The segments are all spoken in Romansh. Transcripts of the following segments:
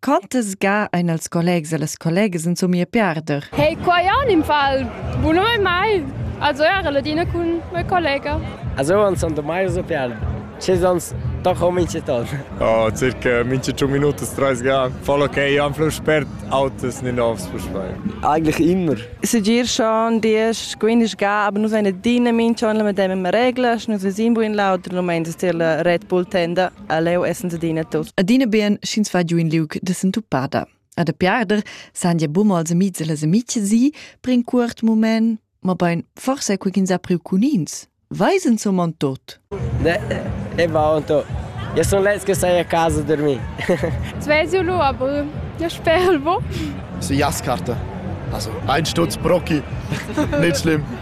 Quantas ga ein els collegs e las collegas insomma a perder? Hey, qua an im Fall. Buno e mai. Also era la Dina cun mia collega. Also uns son da mai so perder. Ce sonst doch ho minche ton. Oh, circa minche 5 Minuten, 30 Grad. Voll okay, am Fluss sperrt Autos nicht aufs Fußball. Eigentlich immer. Es ist dir schon, die erste Gewinner gab, aber nur seine Dine, Minchen, mit dem wir regeln, nur wir sind in Lauter, nur meinen, dass ihr Red Bull tenda. leu essens adina tos. Adina bien sch'ins va giu in liug de sentupada. A de piarder san ja bumo als amics e les amici si per in cuort moment, ma bein forse cu ins ha priu cun ins. Weisen zum man tot? Ne, e va on to. Ja son les che sai a casa dormir. Svesio lo aber. Ja sperl wo. Si Jaskarte. Also ein Stutz Brocki. Nicht schlimm.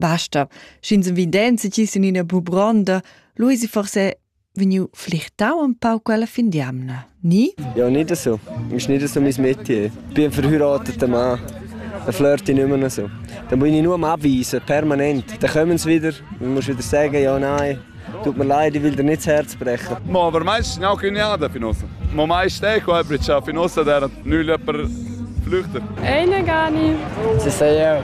Basta, sch'ins evidenza ti sin ina bubronda, Luisi forse vegniu flichtau un pau quella fin d'jamna, ni? Ja, nicht so. Ist nicht so mein Metier. Ich bin verheiratet Mann. Dann flirte ich nicht mehr noch so. Dann muss ich nur abweisen, permanent. Dann kommen sie wieder, dann musst du wieder sagen, ja, nein. Tut mir leid, ich will dir nicht das Herz brechen. Ma aber meistens sind auch Grenada für uns. Ma meistens auch Hebrica für uns, der nicht jemand flüchtet. Eine gar nicht. Sie sagen ja,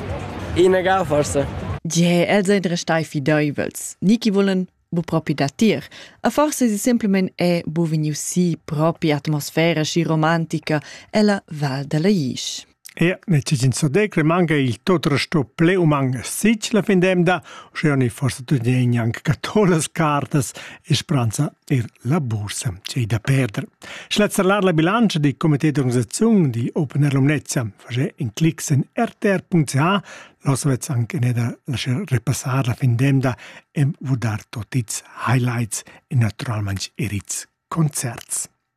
ihnen gar forsen. Ja, els ein restai fideivels. Niki vollen bu propi datir. A forse si semplimen è bu vegniu si propi atmosfera sci romantica ella Val della Isch. Ia n'è tg'in sodec, le manca il tot resto ple u man sich la fin d'emda, uschea ni forsa tutgegn anc catolas cartas e spranza er la bursa c'ei da perder. Schlezzarlar la bilantscha di comité d'organisaziun di Open Air Lumnezia facé in clic sen rtr.ca, los vezz anche ne da lasciar repassar la fin d'emda e vudar tot its highlights e naturalmain er its concerts.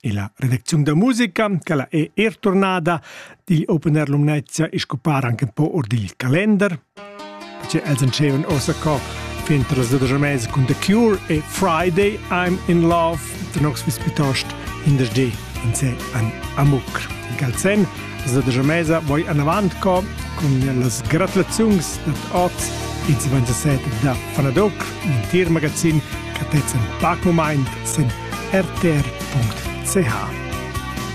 E la redacziun da musica, quella è er turnada, digl Open Air Lumnezia e scopar anche un po' or digl calender. Perché els entscheven ossa co fin tras da mesi cun The Cure e Friday I'm in Love, den Oxford pitost in der G in se an Amuk. Galsen, da da mesa voi anavant co con las gratulazions dat oz in 27 da Fanadoc, in tir magazin catez en pacumaint sen rtr.ch